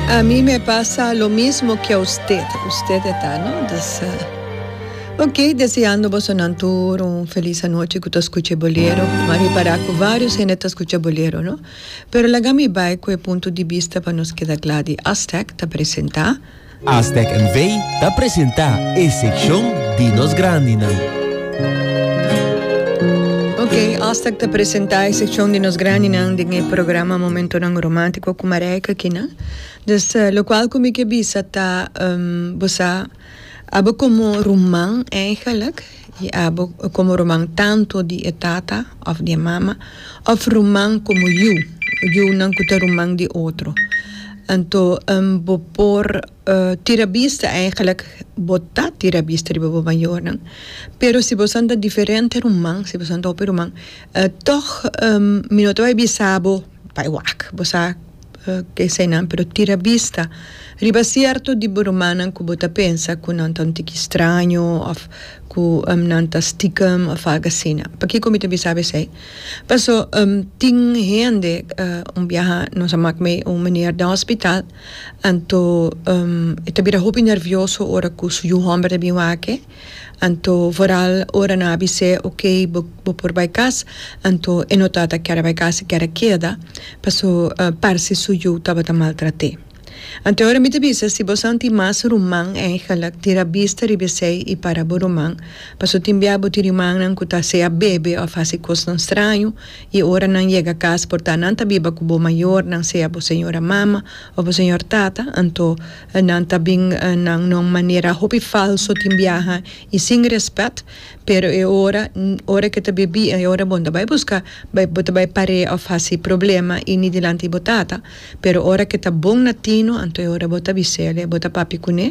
Ami me pasa lo mismo ki a usted, usted e ta no? Dus ok deseando bosonan tur un felis anochi ku ta skucha e bolero, ma repará ku varios hende ta skucha bolero no, pero laga mi bai ku e punto di bista pa nos keda kla di Aztec ta presentá. Aztec NV. ta presenta e seccion di nos grandinan. Ok, Aztec ta presenta e seccion di nos grandinan den e programa Momentonan Romantico cu Marijke Aquino. Dus locual cu mi ke bisa ta bosa abo como ruman eigenlijk. Di abo komo ruman tantu di e tata òf di e mama, òf ruman komo yu, yunan ku ta ruman di otro. Anto bo por tira bista, eigelijk bo ta tira bista riba bo mayornan, pero si boso ta diferente ruman, si boso ta hopi ruman, tòg mi no ta bai bisa bo bai wak, bo sa. esainan, pero tira bista riba sierto di bo rumannan ku bo ta pensa ku nan ta un tiki straño òf ku nan ta stikem òf algu asina. Pakiko mi ta bisa bo esei? Paso tin hende un biaha nos a mak mei un meneer den hospital, anto e ta bira hopi nervioso ora ku su yu hòmber ta bin wak e. Anto vooral ora nan a bis'é ok bo bo por bai kas anto e no tabata kere bai kas e kere keda paso parse su yu tabata maltrat'é. Anto e ora mi ta bisa si bo santi mas ruman eigenlik tira bista riba esei i para bo ruman paso tin bia bo tin rimannan ku ta sea bebe òf hasi kosnan straño i e ora nan yega kas por ta nan ta biba ku bo mayornan sea bo señora mama òf bo señor tata anto Nan ta bin nan no manera hopi falso tin biaha y sin respet pero e ora ora ke ta bebí e ora bon ta bay busca bay bo ta bay parea of haci problema y ni dilanti bo tata pero ora ke ta bon na tino anto e ora bo ta bisele bo ta papi cune.